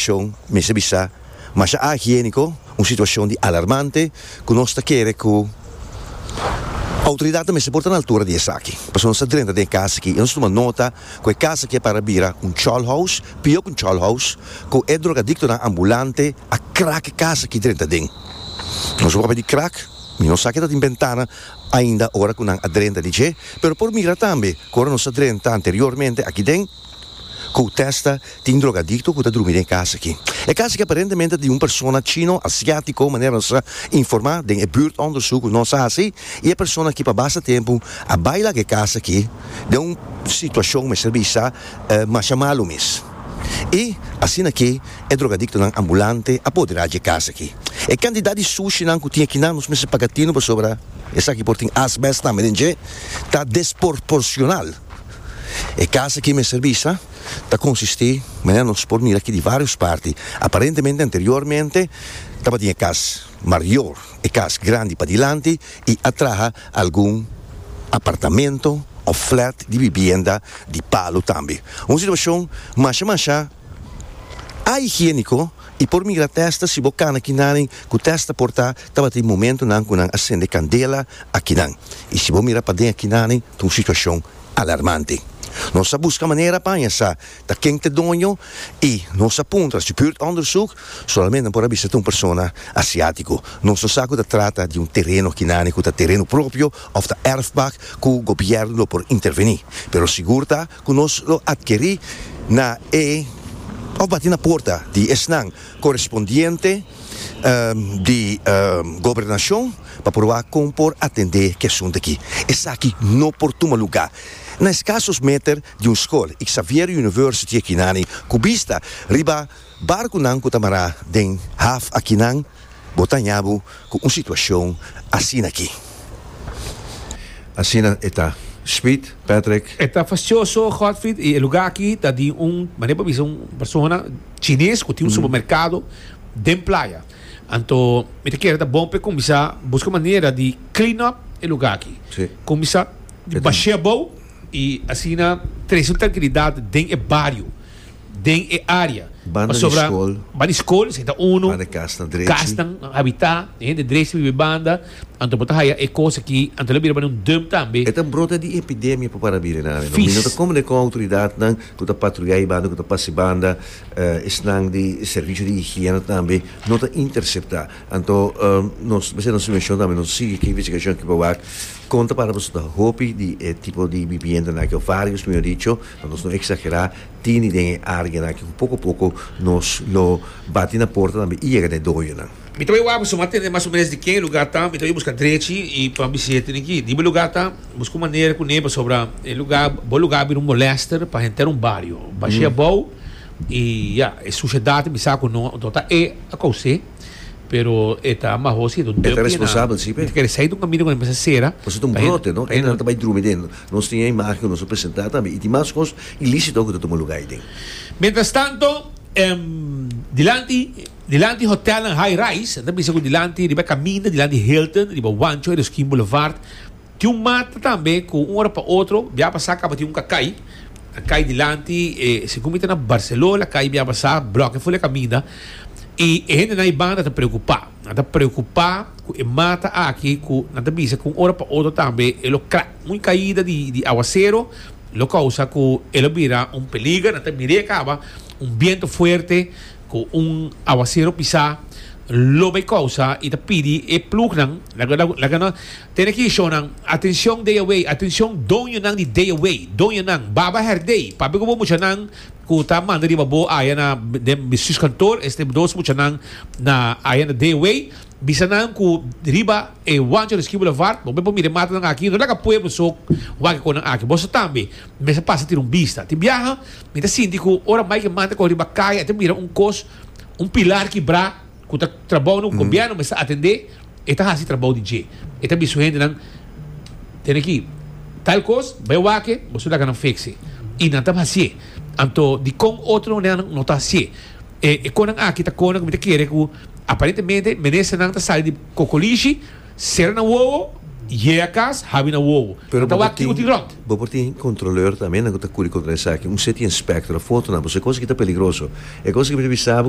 Shon, mester bisa, masha ahigiéniko, un situashon di alarmante ku nos ta kere ku outoridatnan mester por ta na altura di esaki. Pasobra nos ta drenta den e kas aki i nos tuma nota ku e kas aki a para bira un chòlhous, pió ku un chòlhous, ku e drogadiktonan ambulante a krak e kas aki drenta den. Nos wòrdu di krak, mi no sa ke ta tin bentana ainda ora ku nan a drenta di dje, pero por mira tambe ku ora nos a drenta anteriormente aki den, ku testa tin drogadikto ku ta drumi den e kas aki. E kas aki aparentemente ta di un persona chino asiátiko, manera nos a informá den e buurtondersuk ku nos a hasi, i e persona aki pa basta tempu a bai laga e kas aki den un situashon mester bisa masha malu mes. I asina ke e drogadiktonan ambulante a apoderá dje kas aki. E kantidat di sushinan ku tin akinan nos mester paga tino pasobra esaki por tin asbest tambe den dje ta desporporshonal. E casa aki mester bisa ta consisti, manera nos por mira aki, di varios parti. Aparentemente anteriormente tabatin e cas mayor, e cas grandi padilanti y atraha algun apartamento of flat di bibienda di palo tambe. Un situacion masha masha ahigienico y por mira testa si bo cana kinaden cu testa por ta. Tabatin momentunan ku nan a sende kandela akinan, i si bo mira paden akinane ta un situashon alarmante. Nos a buska manera paña sa ta ken ta e doño i nos a puntra si buurtonderzoek solamente nan por a bisa ta un persona asiátiko. Nos no sa ku ta trata di un tereno akinane ku ta tereno propio òf ta erfpak ku gobièrnu lo por intervení, pero sigur ta Ku nos lo atkerí na e òf bati na puerta di esnan korespondiente di Gobernashon pa proba kon por atendé ku e asuntu akí. Esaki no por tuma lugá na e skasos meter di un skol, Xavier University Ekinani, ku bista riba. Barkunan ku ta mará den haf akinan, bo ta haña bo ku un situashon asina aki. Asina e ta. Speed, Patrick. E ta fasioso, Godfried, i e lugá aki ta di un, manera bo a bisa, un persona chines ku tin un supermerkado den playa. Anto mi ta kere ta bon pa e kuminsá buska manera di clean up e lugá aki. Kuminsá di bashea bo i asina trese un trankilidat den e bario. den e área. Pasobra banda di skol si ta unu, kasnan habitá, e hende drechi ta biba banda, anto bo ta haya e kos akí, anto lo bira banda un dump tambe. E ta brota di epidemia pa para bilenami. Mi no ta kòmodo ku outoridatnan ku ta patruya ei banda, ku ta pasa ei banda, esnan di servicio di higiene tambe no ta interceptá. Anto nos mester nos sugeshon tambe nos sigui ki investigashon aki pa wak kon ta para pasobra ta hopi di e tipo di bibiendanan aki, o vários mihor dicho, Pa nos no eksagerá, tin den e áreanan aki ku poko poko nos lo bati na porta tambe i yega na e doyonan. Mi ta bai waak pasobra mi a tende mas o menos di ken e lugá ta. Mi ta bai buska drechi i pa bisi e tene ki. Riba e lugá ta, buska un manera kuné pasobra e lugá, bo lugá a bira un molèster pa henter un bario. Bashé abou i ya, e sushedat ta bisa ku no. Anto ta e a kousé. Pero e ta maho si e ta un tempo y e na mi ta kere sai di un camino cu nan mester cera Pasobra ta un brote, no? E nan ta bai drumi den. Nos tin e imagen cu nos a presenta tambe. Y tin mas cos ilícito awe cu ta tuma lugar ey den. Mientras tanto, dilanti, dilanti hotelnan high-rise, nan ta bisa cu dilanti riba e caminda, dilanti Hilton, riba Juancho, Eroskyn Boulevard, Tin un mata tambe cu un ora pa otro bia pasa caba tin un cacay, a cay dilanti, e segun mi ta na Barcelona la cay bia pasa, bloke ful e caminda, y e hendenan ay banda ta preocupa, nan ta preocupa cu e mata aki cu nan ta bisa cu un ora pa otro tambe e lo crack, muy caida di di aguacero lo causa cu e lo bira un peliger, nan ta mir'e caba un biento fuerte cu un aguacero pisa lo bay causa y ta pidi e plugnan laga laga laga nan. Tene ki shonnan, atencion deawey, atencion doñonan di deawey, doñanan, baba herdey, pape ku bo muchanan ku ta manda riba bo aya na den mi suskantoor, este dos muchanan na aya na deawey, bisa nan ku riba e Juan Choriski Boulevard, bo me por mira e mata nan aki, no laga pueblo so wak e kon nan aki, boso tambe mester pasa tira un bista. Tin biaha mi ta sinti ku ora Mike Manta kòrè riba kaya, a ta mira un kos, un pilar kibrá, Cu ta trabou na un gobierno mester atende, e ta haci trabou di dje. E ta bisa su hendenan, Tene ki tal cos, bai wake, boso laga nan fekse. Y nan ta haci'e. Anto, dicon otro manera nan no ta haci'e? E e conan aki ta conan cu mi ta kere cu aparentemente menesternan ta sali di cocolishi, cera nan wowo, yega cas, habi nan wowo. Pero Nan ta bo por wak tin, kico tin rond. bo por tin controleur tambe nan cu ta curi contra esaki. Un seti inspector a fotonan boso e cos aki ta peligroso. E cos aki mi ta bisa abo cu.